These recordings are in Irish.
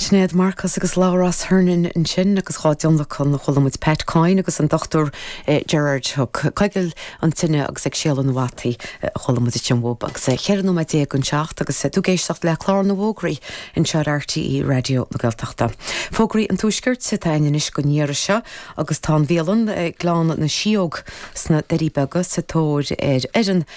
Sinéad Marcus agus Labhrás Hernon ansin agus dhá dtionlacan chuala muid Pat Coyne agus an Dr Gerard Hook. Coigil an tine agus ag séaladh na bhfataí a chuala muid ansin uathu agus é 14 nóiméad don 7 agus tú ag éisteacht le clár na bhfógraí anseo ar RTÉ Raidió na Gaeltachta. Fógraí an Tuaiscirt atá ann anois don iarraidh seo agus tá an bhialann Gleann na Sióg sna Doirí Beaga sa tóir ar fhoireann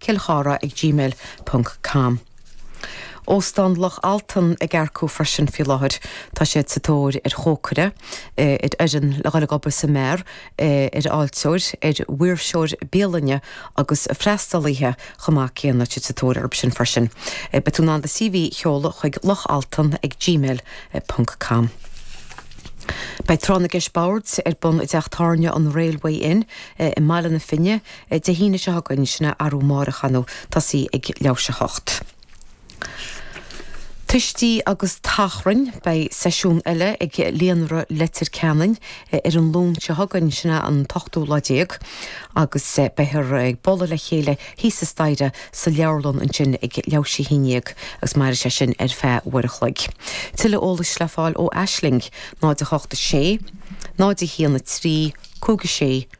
Kilchara ag gmail ponc com. Óstán Loch Altan ag earcú freisin faoi láthair. Tá siad sa tóir ar chócaire, ar fhoireann le ghoil ag obair sa mbeár, ar fháilteoir, ar mhaoirseoir bialainne agus freastalaithe chomh maith céanna. Siad sa tóir orthu sin freisin. Beidh tú in ann do CV a sheoladh chuig lochaltan ag gmail ponc com. Beidh Tráth na gCeist Boird ar bun i dTeach Tábhairne an Railway Inn i mBaile na Finne, Dé hAoine seo chugainn sin é arú amárach ar ndóigh, tosaí ag leathuair tar éis a hocht. Tuistí agus tachráin, beidh seisiún eile ag Líonra Leitir Ceanainn ar an Luan seo chugainn sin é an t-ochtú lá déag agus beifear ag bualadh le chéile thíos an staighre sa leabharlann ansin ag leathuair tar éis a haon déag agus mairfidh sé sin ar feadh uair a chloig. Tuilleadh eolais le fáil ó Aisling, 0 8 6, 0 1 1 3, 5 6,